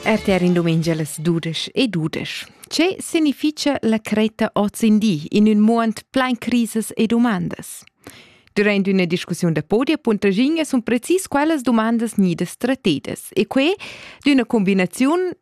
RTR in dumengia las dudesch e dudesch. Ce significha la creta oz in di in ün muond plain crises e domandas? Durant üna discussiun da podi a Puntraginga sun precis quellas dumandas gnidas trattedas e que d'üna combinaziun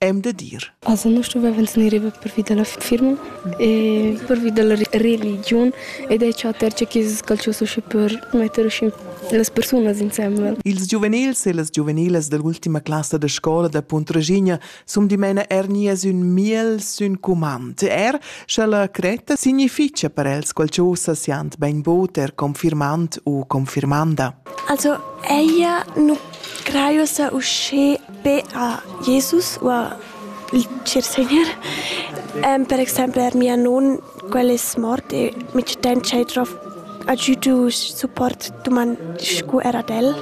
E'm da dir. Aza nu stuvavan gnir riva pervi da la firma e pervi da la religiun ed è chatter che chi es calchus usche per metter usche las persunas insembel. Ils giuvenils e las giuvenilas da l'ultima classa da scola da Puntraschigna sun dimena er nias ün miel sün cumand. Er scha la cretta significha per els qualchosa siand bainbod er confirmand u confirmanda. Also, ella nu craiosa usche be a Jesus u a il Chiersegner. per exempel er mia non, quel es mort e mi sten ch'ei drov agiudu support duman scu er ad el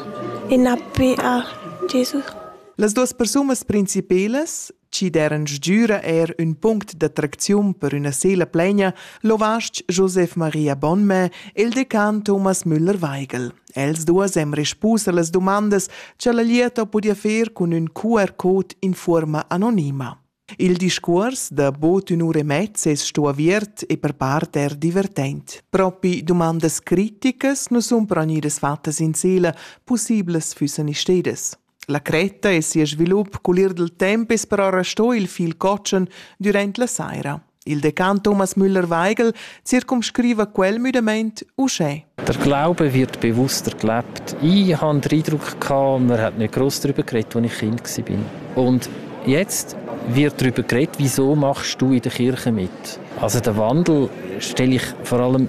e na be a Jesus. Las duas persunas principelas, chi deran sgüra er ün punct d'attracziun per üna sela plegna, lo vast Josef Maria Bonmè e il decan Thomas Müller-Weigel. Els duas han respusa las dumandas cha la lieta pudia fer cun ün QR code in fuorma anonima. Il discuors da bod ün ura e mezza es sto aviert e per part er divertent. Propi dumandas criticas nu sun però gnüdas fattas in sela, pussiblas füssan istedas. La cretta e sia svilup cul ir dil temp es però restò il fil cotschen durant la saira. Il decan Thomas Müller-Weigel circumscriva quel müdamaint uschè. Der Glaube wird bewusst erklärt. Ich habe den Eindruck, gehabt, man hat nicht groß darüber geredet, als ich Kind war. Und jetzt wird darüber geredet, wieso machst du in der Kirche mit? Also den Wandel stelle ich vor allem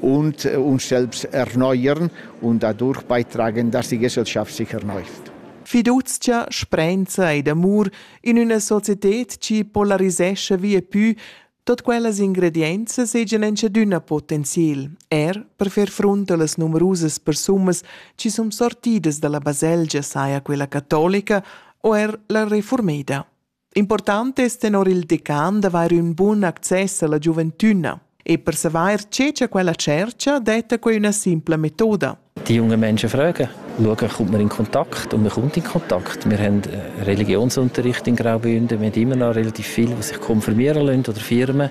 und äh, uns selbst erneuern und dadurch beitragen, dass die Gesellschaft sich erneuert. Fiduzia, sprenza ed amur in üna societed chi polarisescha via pü tot quellas ingredienzas seigien enchadüna potenziel, er per fer front a las numerusas persumas chi sun sortidas dalla baselgia saja quella catolica o er la reformeda. Important es tenor il decan d'avair ün bun access alla giuventüna e per savair che cha quella tschercha detta quei üna simpla metoda. Die jungen Menschen fragen, schauen, kommt man in Kontakt und man kommt in Kontakt. Wir haben äh, Religionsunterricht in Graubünden, wir haben immer noch relativ viel, was sich konfirmieren lassen oder Firmen.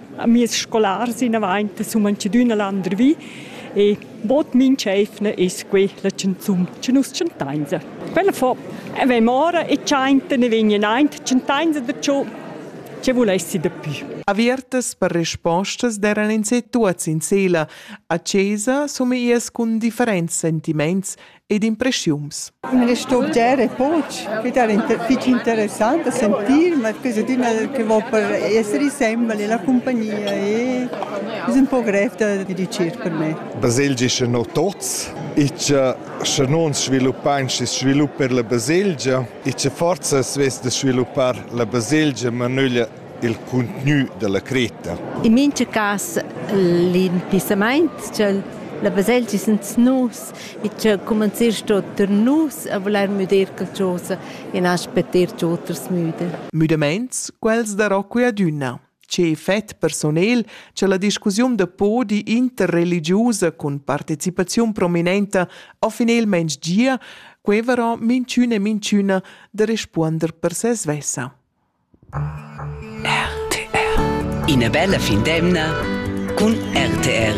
Mies scolars inavaint sun manchadüna landervi e bod minch'eivna es que la chanzun cha nus chantains. Quella fo avain ora e chainta ne vegnan aint chantains da ciò che vulessi dapü. Avertas per respostas d'eran ins tuots in sela. A chesa summias cun differents sentiments ed impreschiums. L'istorgia è fitg interessant da sentir, ma è che va per essere sembra la compagnia e è un po' grev da dirigere per me. Baselgia è no tots, e se non sviluppain si svilupper la baselgia, e se forza svess da sviluppar la baselgia, ma nöglia il cuntgnü da la cretta. In mincha cas l'impissamaint cha'l la baselgia sans nus e cha cumanzist sto tar nus a vulair müder qualchosa e na aspetter che oters müden. Müdamaints, quels da Rocco e adüna. Che effet personel cha la discussiun da podi interreligiusa cun partecipaziun prominenta ho finelmaing gia, quevero minchün e minchüna da respuonder per se svessa. RTR. Ina bella fin d'emna cun RTR.